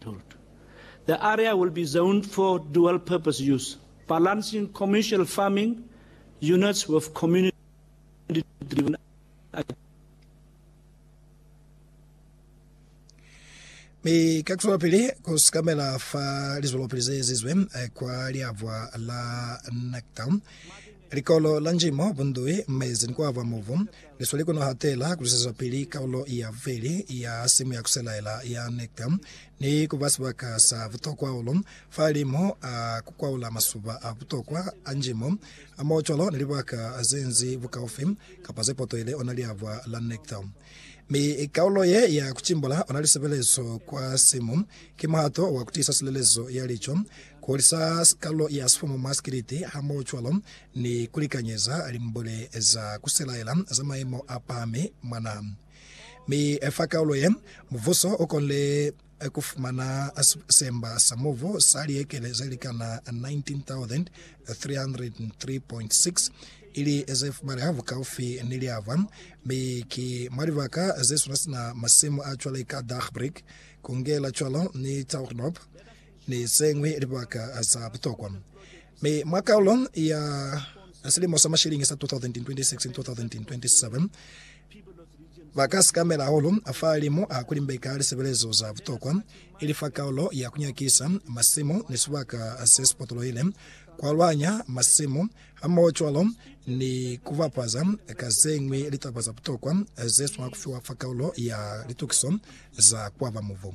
Port. The area will be zoned for dual purpose use, balancing commercial farming units with community driven agriculture. Mi ka kuswelapili ku sikamela fa lizwelopili ze ezizwe kwa liabwa la NACTA, Likolo la njimo, bundui, mezi ni kuaba mubu, ni sweli ku no hatela ku lisezwapili kaulo ya bubeli ya simu ya ku selaela ya Nectar ni ku ba sibaka sa butokwa hahulu fahalimu a ku kwaula masuba a butokwa a njimo hamohocwalo ni libaka ze nzi bukaufi kapa ze potoile ona liabwa la Nectar. Mi kaulo ye ya ku timbula ona lisebelezo kwa simu ki muhato wa ku tiisa silelezo ya lico Kuholisa sikalo ya sifumu mwa sikiliti hamohocwalo ni kulikanyeza limbule za kuselaela za maimo apahami mwa naha. Mi fa kaulo ye, mubuso ukonile kufumana semba sa mubu sa liekele zelikana 19,303.6 ili zefumaleha bukaufi ni liava, mi ki mwa libaka zesuna sina masimu acwale ka Dagbreek, Kungela cwalo ni Taughnoup. ni ze ñwi libaka za butokwa. Mi mwa kaulo ya silimo sa mashiliñi sa 2026-2027, ba ka sikamela hahulu fa limu ha ku limbeka lisebelezo za butokwa, ili fa kaulo ya ku nyakisa masimu ni sibaka se si potolohile, ku alwanya masimu, hamohocwalo ni ku bapaza ka ze ñwi litaba za butokwa ze swanela ku fiwa fa kaulo ya litukiso za ku aba mubu.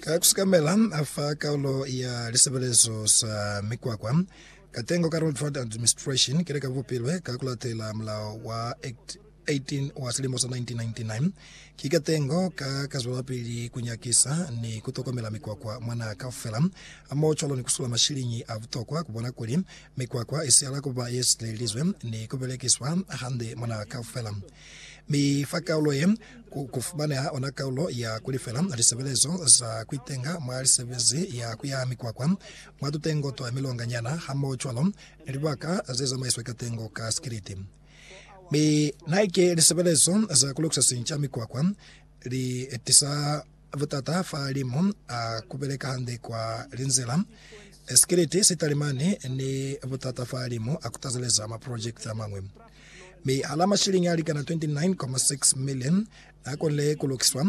Ka ku sikamela, a fa kaulo ya lisebelezo sa mikwakwa katengo ka Road Fund Administration kile ka bupilwe ka ku latela mulao wa Act 18 wa silimo sa 1999. Ki katengo ka ka zwelapili ku nyakisa ni ku tokomela mikwakwa mwa naha kaufela, hamohocwalo ni ku sula mashiliñi a butokwa ku bona kuli mikwakwa i sihala ku ba ye silelelizwe ni ku belekiswa hande mwa naha kaufela. Mi fa kaulo ye, ku, ku fumaneha ona kaulo ya ku lifela lisebelezo za ku itenga mwa lisebezi ya ku yaha mikwakwa, mwa tutengo twa milonga nyana, hamohocwalo ni libaka ze zamaiswe katengo ka sikiliti. Mi naike lisebelezo za ku lukisa sinca mikwakwa li tisa. Butata fa limu a kubeleka hande kwa linzila. Sikiliti, sitalimani, ni butata fa limu a kutazeleza maprojekiti a mañwi. Mi hala mashilingi a likana 29.6 million n'a konile ku lukiswa,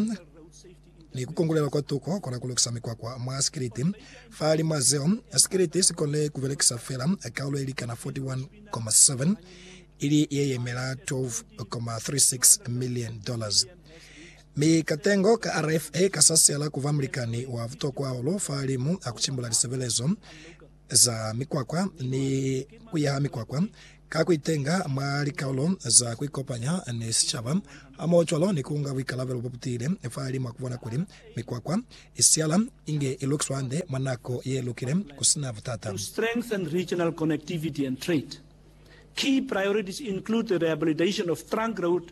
ni ku kongulelwa kwa tuko kola ku lukisa mikwakwa mwa sikiliti. Fa limu a zeo, sikiliti si konile ku belekisa fela kaulo ye likana 41.7, ili ye yemela 12.36 million dollars. Mi katengo ka RFA kasasela kuba mulikani wa butokwa hahulu fahalimu a kucimbula lisebelezo za mikwakwa ni kuyaha mikwakwa, ka kuitenga mwa likaulo za kuikopanya ni sicaba, hamohocwalo ni kuunga buikalabelo bobutiile fahalimu a kubona kuli mikwakwa isihala inge ilukiswa hande mwa nako yelukile kusina butata. To strengthen regional connectivity and trade, key priorities include the rehabilitation of trunk road